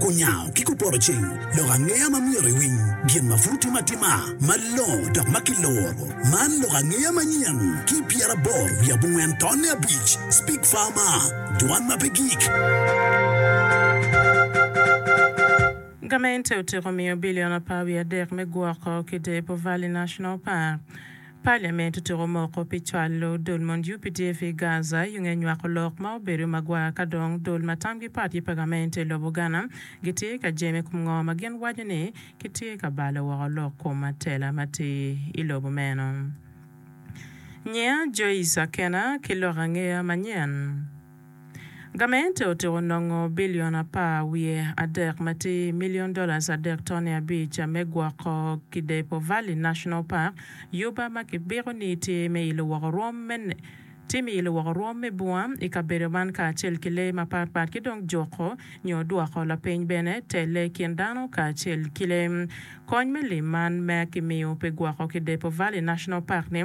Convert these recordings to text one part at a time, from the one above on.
Kunyango ki kupoto ceng lok angeya ma myero iwiny gin ma pud tim atima malongo dok ma kiluro. Man lok angeya manyen ki pyeraboro wiye abongwen tonne abic, Speak Farmer, Dwan ma pe gik. Gamente otiko miyo bilion apar wiye adek me gwoko ki depo Valley National Park. Parliament otuko moko pi cwalo dul mon UPDF i Gaza i nge nywako lok ma obedo magwar ka dong dul ma tamgi pat ki pa gamente i lobo Ghana gitye ka jemo i kom ngo ma gin waco ni kitye ka balo woko lok kom matela ma tye i lobo meno. Nyiya Joyce Akena ki lok angeya manyen. Gamente otiko nongo bilion apar wiye adek ma tye milion dollars adek toni abic me gwoko kidepo Valley National Park, Yuba ma kibiko ni tye me ilo woko rwom me tye me ilo woko rwom me bunga i kabedo man kacel ki lee mapat pat ki dong juko nyo dwoko lapeny bene telle i kin dano kacel ki lee. Kony me lim man ma kimiyo pi gwoko kidepo Valley National Park ni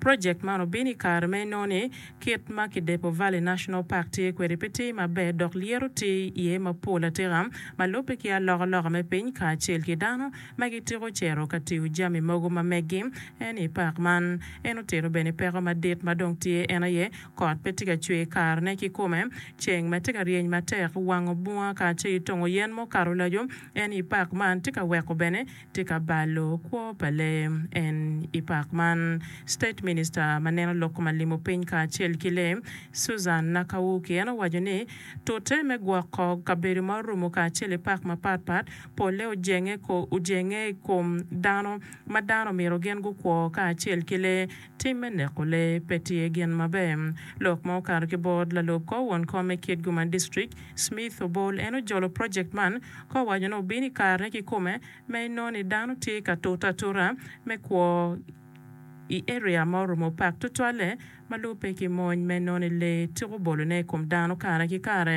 Project man obino i kare ma inongo ni kit ma Kidepo Valley National Park tye kwede pe tye maber dok lyeto tye iye mapol atika ma lubbe ki alokaloka me piny kacel ki dano ma gitiko cito ka tiyo jami mogo ma meggi en i park man. En otito bene peko madit ma dong tye en aye kot pe tye ka cwer karene kikome, ceng ma tye ka ryeny matek wango bunga kacel ki tongo yen mukato laco en i park man tye ka weko bene Tika balo kwo pa lee en i pak man? State Minista ma neno lok ma limo piny kacel ki lee, Susan Nakawuki en owaco ni tute me gwoko kabedo ma orumo kacel i pak mapat pat polle ojenge ojenge i kom dano ma dano myero gin gukwo kacel ki lee. Tim me neko lee pe tye gin maber. Lok ma okato ki bot lalub kor won kom me Kitgum-a District, Smith Obol en ojolo project man ka owaco ni obino i karene kikome ma inongo ni dano tye ka tute atuta me kwo i area ma orumo opak tutwalle ma lubbe ki mony ma inongo ni lee ciko bolone i kom dano kare ki kare.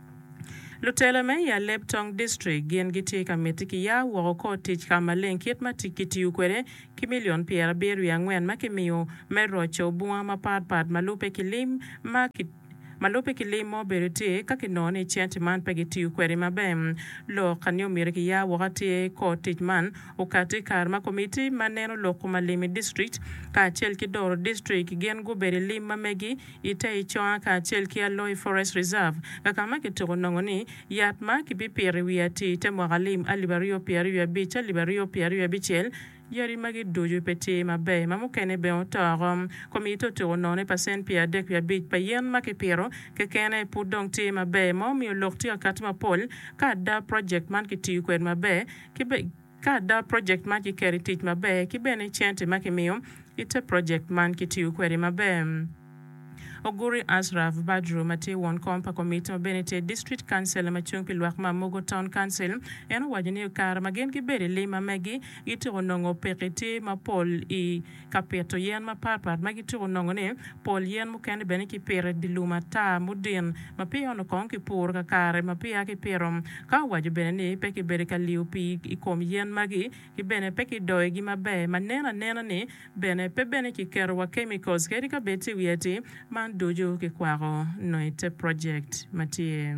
Lutelo me i Aleb Tong District gin gitye ka miti ki ya woko kor tic ka maleng kit ma kitiyo kwede ki milion pyerabiro wiye angwen ma kimiyo me roco bunga mapat pat ma lubbe ki lim ma ma lubbe ki lim ma obedo tye ka kinongo ni centi man pe kitiyo kwede maber lok ka ni omyero ki ya woko atir kor tic man okati i kare ma komiti ma neno lok kumalim i district kacel ki doro district gin gubedo i lim ma megi I te Iconga kacel ki Aloi Forest Reserve, kaka ma kituko nongo ni, yat ma kibipito i wi atir te mwaka lim alip aryo pye aryo abic ci alip aryo pye aryo abicel, yadi magi ducu pe tye maber, ma mukene bene oto oko. Komiti otuko nongo ni pacent pye adek wiye abic pa yen ma kipito kekene pud dong tye maber, ma omiyo lok tye ka kati mapol ka ada project man kitiyo kwede maber. Ka ada, projekt man kiketo i tic maber ki bene cente ma kimiyo i te projekt man kitiyo kwede maber. Oguri Ashraf Badru ma tye won kom pa komiti ma bene tye District Councillor ma cung pi lwak ma Amogo Town Council, en owaco ni i kare ma gin gibedo i lim ma megi, gitiko nongo pekki tye mapol i. Ka pito yen mapatpat ma gitiko nongo ni pol yen mukene bene kipito i dye lum ata mudin ma peya onongo kong kipuro kakare ma peya kipito. Ka owaco bene ni pe kibedo ka liyo pii i kom yen magi ki bene pe kidoyogi maber ma nen anena ni bene pe bene kiketo wa chemicals kadi ka bed tye wiye atir man ducu kikwako nongo i te project ma tye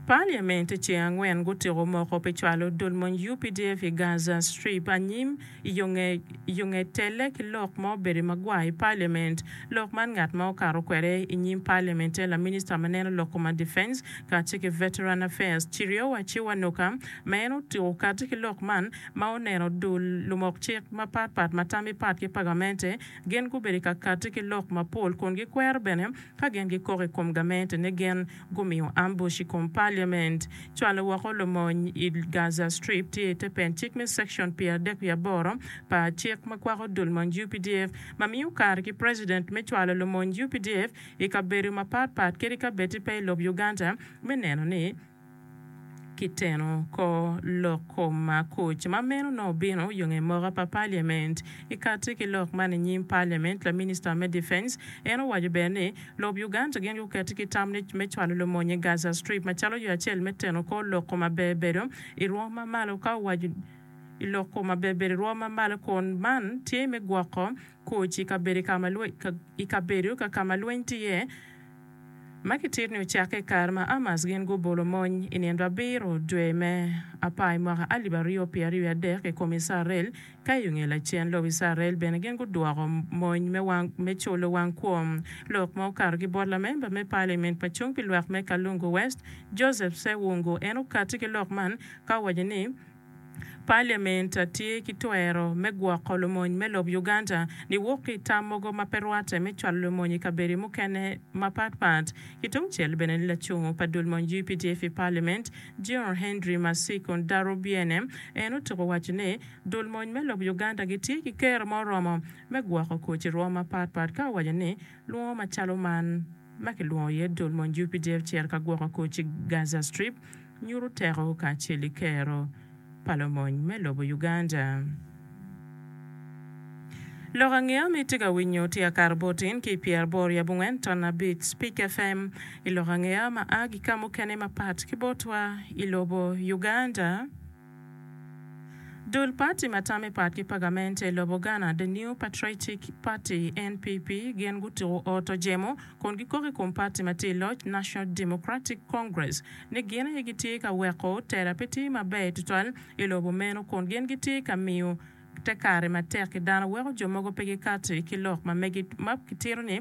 Parliament ce angwen gutiko moko pi cwalo dul mony updf i Gaza Strip anyim i yo nge i yo nge telle ki lok ma obedo magwar i Parliament. Lok man ngat ma okato kwede i nyim Parliament en la Minister ma neno lok koma Defence kacce ki Veteran Affairs Chiriowa Chiwanuka ma en otiko kati ki lok man ma oneno dul lumok cik mapat pat ma tamgi pat ki pagamente gin gubedo ka kati ki lok mapol kun gikwero bene Ka gin gikok i kom gamentene, gin gumiyo ambush i kom Parliament. Cwalo woko lumony i Gaza Strip tye i te pen cik me Section pyeradek wiye aboro pa cik ma kwako dul mony updf ma miyo kare ki President me cwalo lumony updf i kabedo mapat pat kadi ka bed pe i lob Uganda me neno ni Kiteno kor lok kom makoc ma meno nongo obino yo nge moka pa Parliament. I kati ki lok man i nyim Parliament, la Minister me Defence en owaco bene ni lob Uganda gin guketi ki tam ni me cwalo lumony i Gaza Strip macalo yo acel me teno kor lok kom maber bedo i rwom ma malo ka owaco i lok kom maber bedo i rwom ma malo kun man tye me gwoko koc i kabedo ka ma lweny tye iye. ma kitito ni ocakke i kare ma Hamas gin gubolo mony i nino abiro dwe me apar i mwaka alip aryo pyeraryo wiye adek i kom Icrael, ka i onge lacen lobo Icrael bene gin gudwoko mony me wang me culo wang kwom lok ma okato gi bot lamemba me parliament pa cung pi lwak me Kalungu West Joseph Sewungu en okati ki lok man ka owaco ni Parliament tye ki twero me gwoko lumony me lob Uganda niwok ki i tam mogo ma pe rwatte me cwalo lumony i kabedi mukene mapatpat. Ki tungcel bene ni lacungo pa dul mony updf i Parliament, General Henry Masiko Ndarubyene en otuko waco ni dul mony me lob Uganda gitye ki kero ma oromo me gwoko kwo ci rwom mapatpat ka owaco ni lwongo macalo man ma kilwongo iye dul mony updf cito ka gwoko kwo ci Gaza Strip Nyuto teko kacel i kero pa lomony me lobo Uganda. Lok angeya ma itye ka winyo tye akato bot in ki i pyer aboro yab ongwen ton abic Speak FM i lok angeya ma a ki ka mukene mapat ki botwa i lobo Uganda. Dul pati ma tamme pat ki pagamente i lobo Ghana, The New Patriotic Party, NPP, gin gutuko ot ojemo kun gikok i kom pati ma tye i loc, National Democratic Congress, ni gin aye gitye ka weko tela pe tye maber tutwal i lobo meno kun gin gitye ka miyo te kare matek ki dano weko jo mogo pe gikati ki lok ma megi ma kitito ni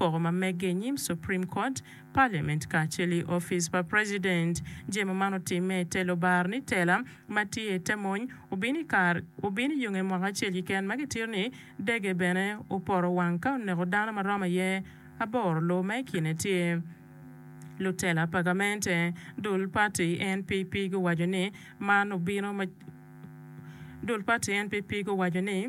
koko ma megge i nyim Supreme Court, Parliament kacel i opic pa President. Je ma man otimme i te lobar ni tela ma tye i te mony obino i kar obino i yunge mwaka acel kiken ma kitito ni dege bene oporo wang ka oneko dano ma romo aye aboro lo ma i kine tye lutela pa gamente. Dul pati NPP guwaco ni man obino ma Dul pati NPP guwaco ni.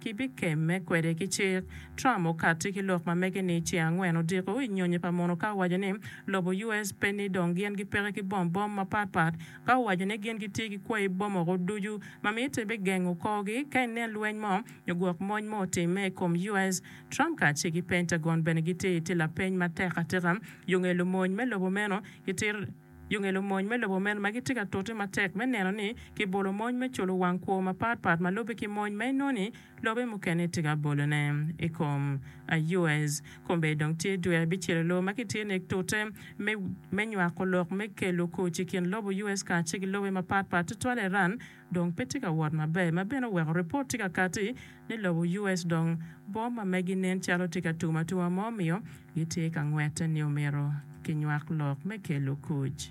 Ki pi kemme kwede ki cik, Trump okatti ki lok ma mege ni ce angwen odiko i nyonyo pa mono ka owaco ni lobo US pe ni dong gin gipeke ki bom bom mapat pat ka owaco ni gin gitye ki kwayi bom oko ducu ma mite me gengo korgi ka inen lweny mo nyo gwok mony mo otimme i kom US. Trump kacel ki Pentagon bene gitye i te lapeny matek atika yo ngelo mony me lobo meno ki tito Yo ngelo mony me lobo meno ma gitye ka tute matek me neno ni kibolo mony me culo wang kwo mapat pat ma lubbe ki mony ma inongo ni lobe mukene tye ka bolone i kom US. Kombeddi dong tye dwe abicel i loo ma kitye nek tute me nywako lok me kelo koc i kin lobo US kacel ki lobe mapat pat tutwale Iran dong pe tye ka wot maber ma bene oweko ripot tye ka kati ni lobo US dong bom ma megi nen calo tye ka tum atuma ma omiyo gitye ka ngwette ni omyero kinywak lok me kelo kuc.